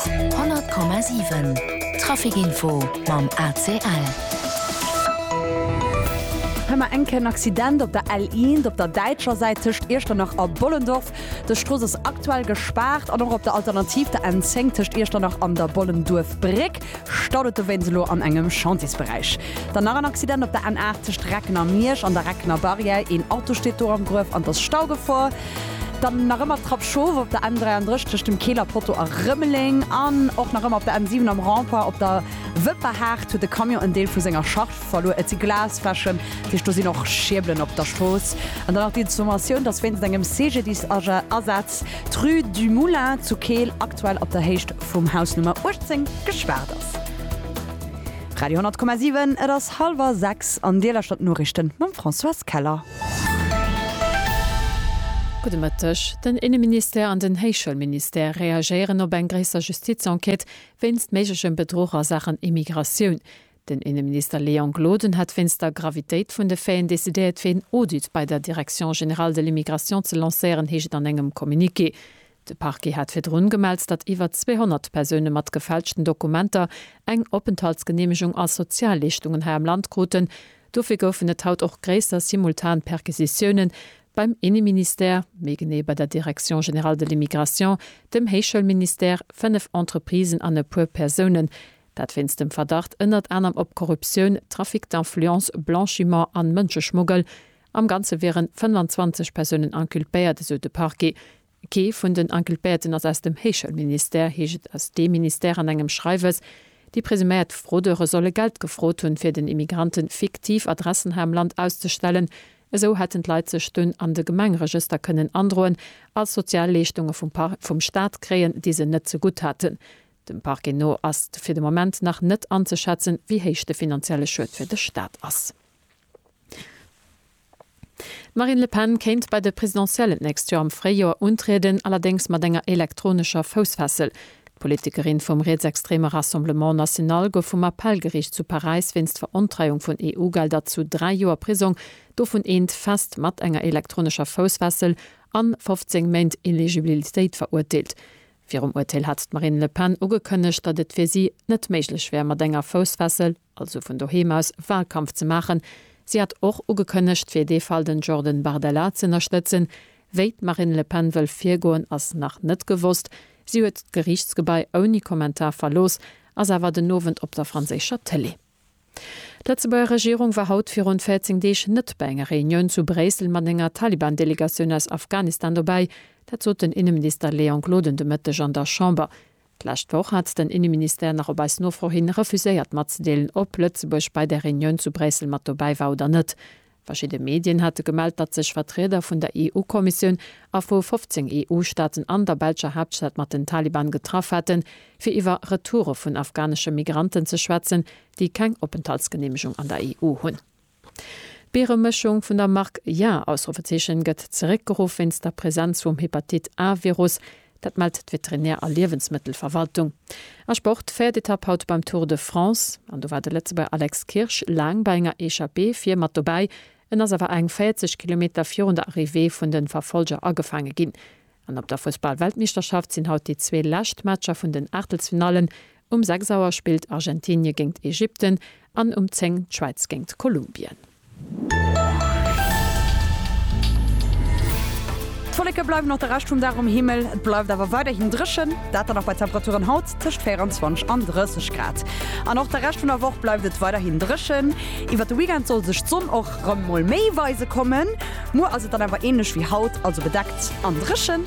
100,7 Trafic info mam ACL. Hei mar enk en Accident op der L 1 op der däitscher Säit tëscht Iechternach a Bollendorf. Dës Strooss ass aktuell gespaart an och op der Alternativ der N 10 tëscht Iechternach an der Bollenduerfbréck staut et dowéinst elo an engem Chantiesberäich. Dann nach en Accident op der N 8 tëscht Recken a Miersch an der Reckener Barrière. Een Auto steet do am Gruef an 't ass Staugefor. Dann nach ëmmer d'Trapp Schoof op der N33 dem Keeler Potto a Rëmeleng an och nach ëmmer op der N7 am Rond-point op der Wëpperhaart huet e Camion en Deel vu senger Charge verluer. Et si Glasfläschen, dat heescht do sinn och Schierbelen op der Strooss. An dann nach d'Informatioun, dass wéinst engem CGDIS-Asaz d'Rue du Moulin zu Keel aktuell op der Héicht vum Haus Nummer 18 gespaart ass. Radio 100,7, et ass hallwer 6 an Dir lauschtert d'Noriichten mam Françoise Keller. Gudde Mëtteg. Den Inneministère an den Héichschoulministère reagéieren op eng gréisser Justizenquête wéinst méiglechem Bedruch a Saachen Immigratioun. Den Inneminister Léon Gloden hat wéinst der Gravitéit vun de Faiten decidéiert fir een Audit bei der Direction générale de l'immigration ze lancéieren, heescht et an engem Communiqué. De Parquet hat virdrun gemellt, datt iwwer 200 Persoune mat gefälschten Dokumenter eng Openthaltsgeneemegung a Sozialleeschtungen hei am Land kruten. Dofir goufen et haut och gréisser simultan Perquisitioune beim Inneministère, méi genee bei der Direction générale de l'immigration, dem Héichschoulministère, fënnef Entreprisen an e puer Persounen. Dat wéinst dem Verdacht ënnert anerem op Korruptioun, Trafic d'influence, Blanchiment an Mënscheschmuggel. Am Ganze wieren 25 Persounen inculpéiert, esou de Parquet. Kee vun den Inculpéierten ass aus dem Héichschoulministère, heescht et aus deem Ministère an engem Schreiwes. Déi presuméiert Fraudeure solle Geld gefrot hunn, fir den Immigrantë fiktiv Adressen hei am Land auszestellen. Esou hätten d'Leit sech dunn an de Gemengeregëster kënnen androen, als Sozialleeschtunge vum Staat kréien, déi se net zegutt haten. Dem Parquet no ass fir de Moment nach net anzeschätzen, wéi héich de finanzielle Schued fir de Staat ass. D'Marine Le Pen kéint bei de Presidentiellen d'nächst Joer am Fréijoer untrieden, allerdéngs mat enger elektronescher Foussfessel. D'Politikerin vum rietsextreme Rassemblement National gouf vum Appellgeriicht zu Paräis wéinst Verontreiung vun EU-Gelder zu dräi Joer Prisong, dovun eent fest mat enger elektronescher Foussfessel, an 15 Méint Ineligibbilitéit verurteelt. Virum Urteel hat d'Marine Le Pen ugekënnegt, datt et fir si net méiglech wär mat enger Foussfessel. also vun doheem aus Wahlkampf ze maachen. Si hat och ugekënnegt, fir dee Fall den Jordan Bardella ze ënnerstëtzen. Wéi d'Marine Le Pen wëll virgoen, ass nach net gewosst. Si huet d'Geriichtsgebai ouni Kommentar verlooss, ass awer den Owend op der franséischer Tëlee. D'Lëtzebuerger Regierung war haut virun 14 Deeg net bei enger Reunioun zu Bréissel mat enger Taliban-Delegatioun aus Afghanistan dobäi. Dat sot den Inneminister Léon Gloden de Mëtteg an der Chamber. D'lescht Woch hat den Inneministère nach op eis Nofro hin refuséiert matzedeelen, ob Lëtzebuerg bei der Reunioun zu Bréissel mat dobäi war oder net. Verschidde Medien hate gemellt, datt sech Vertrieder vun der EU-Kommissioun a vu 15 EU-Staaten an der belscher Haaptstad mat den Taliban getraff hätten, fir iwwer Retoure vun afghanesche Migranten ze schwätzen, déi keng Openthaltsgeneemegung an der EU hunn. D'Bieremëschung vun der Mark Ja! gëtt zeréckgeruff wéinst der Presenz vum Hepatit A-Virus. Dat mellt d'Veterinär a Liewensmëttelverwaltung. A Sport, Véiert Etapp haut beim Tour de France. An do war de Lëtzebuerger Alex Kirsch laang bei enger Echappée vir mat dobäi. En ass awer eng 40 Kilometer virun der Arrivée vun de Verfollger agefaange ginn. An op der Fussball-Weltmeeschterschaft sinn haut déi zwee lescht Matcher vun den Aachtelsfinallen Um 6 Auer spillt Argentinie géingt Ägypten an um 10 d'Schwäiz géingt Kolumbien. D'Wolleke bleiwen och de Rescht vum Dag um Himmel, et bleift awer weiderhin dréchen, dat dann och bei Temperaturen haut tëscht 24 an 30 Grad. An och de Rescht vun der Woch bleift et weiderhin dréchen. Iwwert de Weekend soll sech d'Sonn och rem mol méi weise kommen. Muer ass et dann awer änlech wéi haut, also bedeckt an dréchen.